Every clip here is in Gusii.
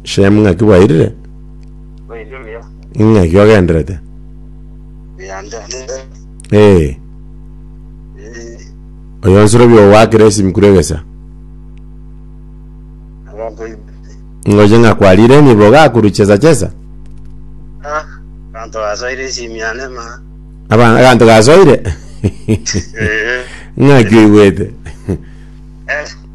Shemu ng'aki bwairire? Bairi buya. Ng'aki ogenderete? Yande ndinde. Ee, Eh, oyo nsoro biogwakire esimi kure egesa. Abanto ibere. Ngoche ng'a kwarire enibo gakuru chesa chesa. Ah, abanto basoire esimi yane ma. Aba- Abanto gasoire? Eh, Ng'aki oigwete? eh.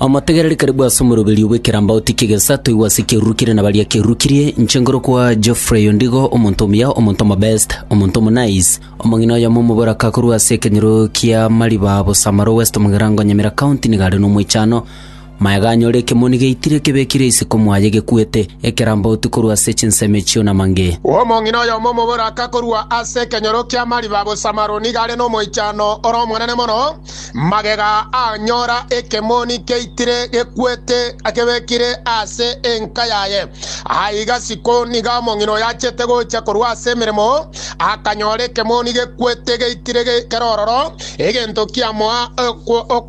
Omotegereri karibu ase omoroberio bw'ekeramba otikie gesa, toigwa ase ekerurukire na baria kerurukirie, inche ngorokwa Geoffrey Ondigo, omonto omuya, omonto omobest, omonto omonice. Omong'ina oyomo omoboraka korwa ase ekenyoro kia Mariba Bosamaro West Mugirango Nyamira County nigo are nomoichano. Maega anyore ekemoni geitire kebekire isiko mwaye gekwete, ekeramba oti korwa ase chinsemo echio na mange. Omong'ina oyomo omoboraka korwa ase ekenyoro kia Mariba Bosamaro nigo are nomoichano ore omonene mono, Magega anyora ekemoni keitire gekwete akebekire ase enka yaye. Aiga isiko nigo omong'ina oyo achete gocha korwa ase emeremo, akanyora ekemoni gekwete geitire kere ororo, egento kiamoa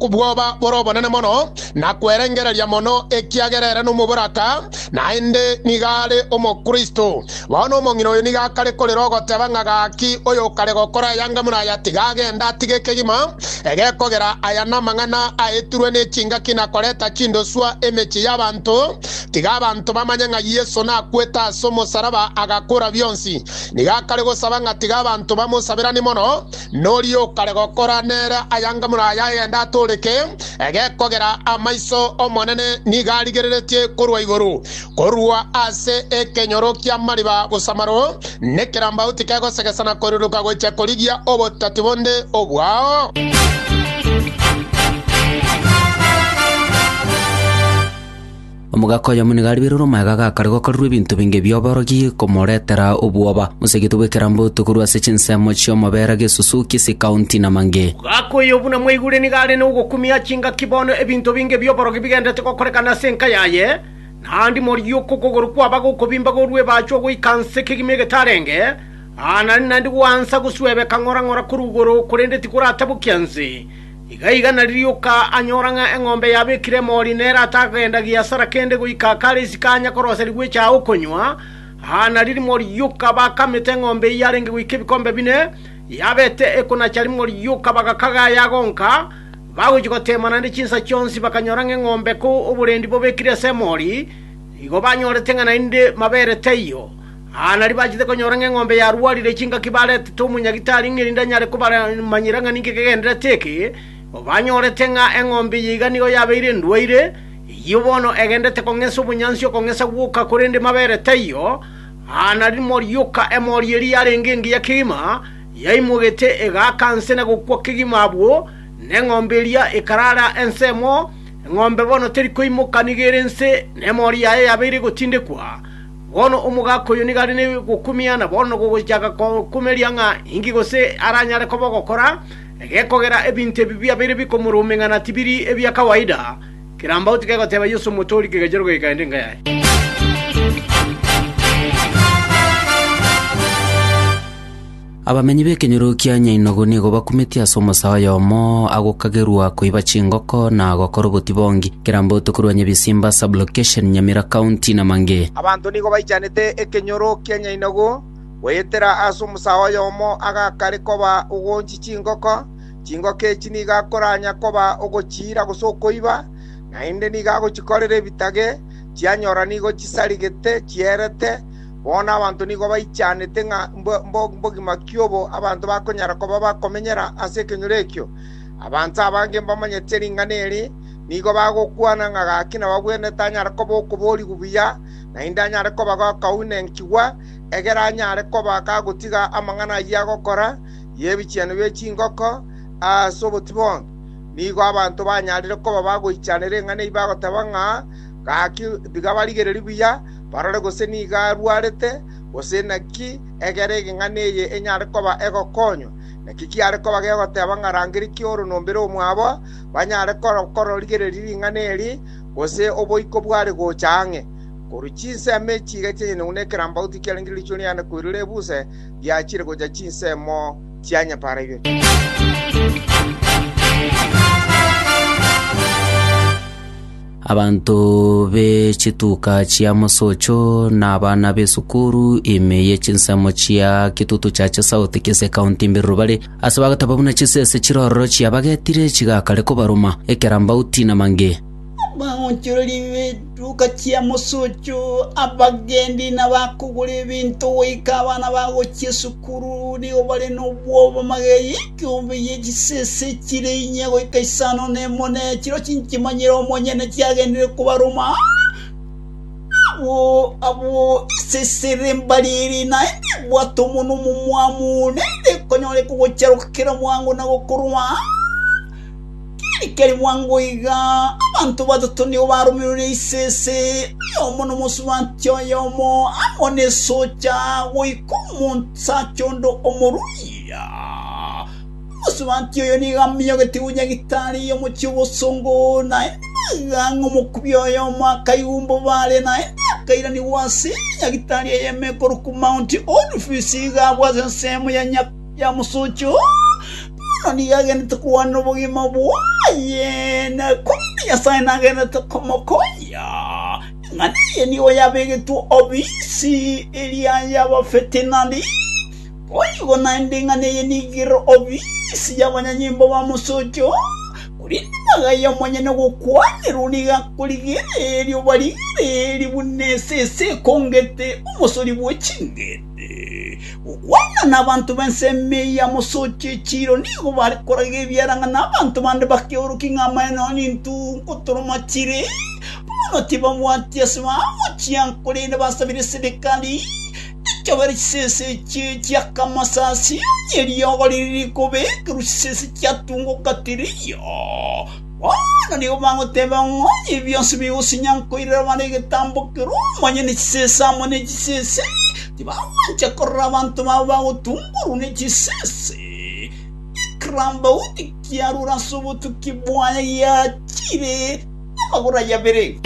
obwoba bore obonene mono na kwerengereria mono, ekiagera ere nomoboraka, naende nigo are Omokristo. Bono omong'ina oyo nigo akare korera ogoteba ng'a, Gaki, oyokare gokora aya anga buna aya, tiga agende, atige ekegima egekogera aya namang'ana aetirwe ne chingaki na koreta chindoswa emechie y'abanto, tiga abanto bamanye ng'a Yeso nakwete ase omosaraba agakora bionsi. Nigo akare gosaba ng'a tiga abanto bamosaberanie mono, noria okare gokora nere aya anga buna aya agende atoreke egekogera amaiso 'Omonene nigo arigereretie korwa igoro. Korwa ase ekenyoro ki'amariba gosamaro, nekerambau tikegosegesa na koruruka gochia korigia obotati bonde obwao. Omogaka oyomo nigo ariberwe amaega gakare gokorerwa ebinto binge bi'oborogi komoretera obwoba. Mosegete bw'ekeramboto korwa ase chinsemo chi'omobera gesusu, kisi, kaunti, na mange. Omogaka oyo buna mwaigure nigo are nogokumia chingaki bono ebinto binge bi'oborogi bigenderete gokorekana ase enka yaye. Naende morie uko okogoro kwaba gokobimba gorua ebache ogoika nse kegima egetarenge, aa, nari naende gwansa goswebeka ng'ora ng'ora korwa igoro, korende tikoratabokia nse. Iga iga nari rioka anyora ng'a eng'ombe yabekire emori nere atagenda giasara kende goika akare isiko anya korosa rigwecha aa okonywa, aa, nari rimo rioka bakamete eng'ombe eyio arenge goika ebikombe bine, yabete ekonacha rimo rioka bagakaga ayagonka, Bagochia goteema naende chinsa chionsi bakanyora ng'a eng'ombe ko oborendi bobekire ase emori, igo banyorete ng'a naende mabere taiyo. Aa nario bachete konyora ng'a eng'ombe yarwarire chingaki baretete omonyagitari ng'a erinde anyare kobaramanyera ng'a ninki kegendererete eke, banyorete ng'a eng'ombe eye iga nigo yabeire endwaire, eyio bono egendererete kong'esa obonyansi okong'esa gwoka korende mabere taiyo. Aa nario morioka emori eria yarenge engiya kegima. Yaimogete egaaka nse na gokwa kegima abwo, na eng'ombe eria ekaraara ensemo. Eng'ombe bono teri koimoka nigo ere nse, na emori yaye yabeire egotindekwa. Bono omogaaka oyo nigo are ne gokumia, na bono nogochaka kokumeria ng'a inki gose aranyare koba ogokora, egekogera ebinto ebi biabeire bikomorumeng'ana tibiri ebia kawaida. Kerambauti kegoteba Yeso Omotoori kegachorwa kegakaenda enka yaye. Abamenyi b'ekenyoro kia Nyainogu nigo bakumetie ase omosaa oyomo agokagerwa koiba chingoko na gokora obotibongi, Kiramboto korwa Nyabisimba Sub-location, Nyamira County na mangĩ. Abanto nigo baichanete ekenyoro kia Nyainogu goetera ase omosaa oyomo agakare koba ogoonchia chingoko. Chingoko echi nigo akoranya koba ogochiira gose okoiba, naende nigo agochikorera ebitage, chianyora nigo chisarigete chierete. Bono abanto nigo baichanete ng'a mbogima ki obo abanto bakonyara koba bakomenyera ase ekenyoro ekio. Abanto abange mbamanyete ring'ana eri nigo bagokwana ng'a gaki nababwene tanyare koba okoboorigwa buya, naende anyare koba gakaunekigwa, egere anyare koba gagotiga amang'ana ayio agokora y'ebichenu bie chingoko ase obotiboki. Nigo abanto banyarire koba bagoichanera eng'ana eyio bagoteba ng'a, Gaki tiga barigererie buya, barore gose nigo arwarete, gose naki egere egeng'ana eye enyare koba egokonywa. Naki kiare koba gegoteba ng'a rangeria ki'oronombere omwabo, banyare kororigereria ring'ana eri, gose oboiko bware gocha ang'e. Korwa chinsemo echi iga chianyene buna ekerambagu tikiarengire riichwe riane koirora ebuse, riachire gocha chinsemo chia nyapaara ibere. Abanto be chituka chia mosocho na abana b'esukuru ime ye chinsemo chia Kitutu Church South, Kisii County mberero bare, ase bagataba buna chisese chiroro chiabagetire chigakare kobaruma, ekerambauti na mange. Abaonchoreri b'etuka chia mosocho, abagendi, na abakogora ebinto goika abana bagochia esukuru nigo bare nobwoba magegi. Chiongo ye chisese chire inye goika isano nemo ne chiro chinchimanyire omonyene chiagenderire kobaroma abwo abwo esese ere mbari eri naende ebwate omonwa omomwamu naende ekonyoreka ogocharoka kera mwango na gokorwa keri keri mwango iga abanto batato nigo baromerwe ne isese oyomo nomosubanti oyomo amo nesocha goika omonsacha onde omorui Omosubaanti oyo nigo amenyogete gochia gitaari y'omochie obosongo, na ekang'a omokubia oyomo akaigwa mbobare, na akairanigwa ase nyagitaari eyemo ekorokwa Mount Olifes, iga agwa ase ensemo ya mosocho. Bono nigo agenderete kogwanera obogima bwaye, na korende Nyasae nagenderete komokonya. Eng'ana eye nigo yabegetwe obisi eria y'abafeti, na riire. Boigo naende ing'ana eye nigere obisi y'abanyanyimbo ba mosocho, korende magega y'omonyene ogokwanerwa nigo akorigereria obarigereria buna esese ekongete omosori bwe ching'ende. Gokwana nabanto b'ensemo eye ya mosocho echiiro nigo bare koraga ebiarang'ana abanto bande bakeorokia ng'a amaene ao nintunko toromachire, bono tibabwati ase bagochia korende basabire serikali, Ekebere chisese echi chi'akamasasi eriogo riri rikobekerwa chisese chiatunguka tiriyo. Bono nigo bagoteba ng'a onye ebi bionsi bigosinya nkoirera bare egetambo kere omonyene chisese amo ne chisese, tibagwancha korora abanto babo bagotunkorwa ne chisese. Ekirambauti kiarure ase obotuki bwaye giachire. Amagoro aye abere.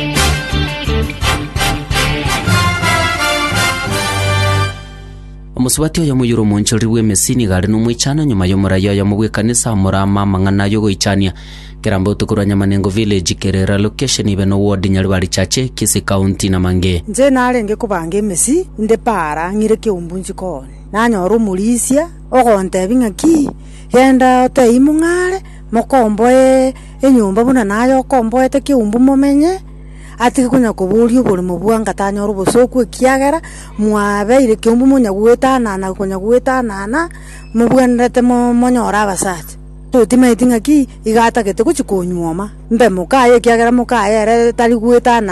Omosubati oyomo oyoire omoonchoreri bw'emesi nigo are nomoichano nyuma y'omoraia oyomo bw'ekanisa omorama amang'ana ay'ogoichania. Keramba otuko rwa Nyamanengo Village, Kerera location, ibe no ward Nyaribari Chache, Kisii County na mangĩ. Inche narenge kobanga emesi inde paara ng'ire keumbu nchikoni, nanyora omorisia ogontebi ng'aki, genda otebie mong'are, mokomboe enyomba buna naye okomboete keumbu momenye, atige konya koboria oborimo bwa ngatanyore obosooku ekiagera mwabeire keumbu monya goetanana konya goetanana mobwenerete mo monyore abasacha. Totimaeti ng'aki iga atagete gochi konyuoma, mbe moka aye ekiagera moka aye ere tari goetana.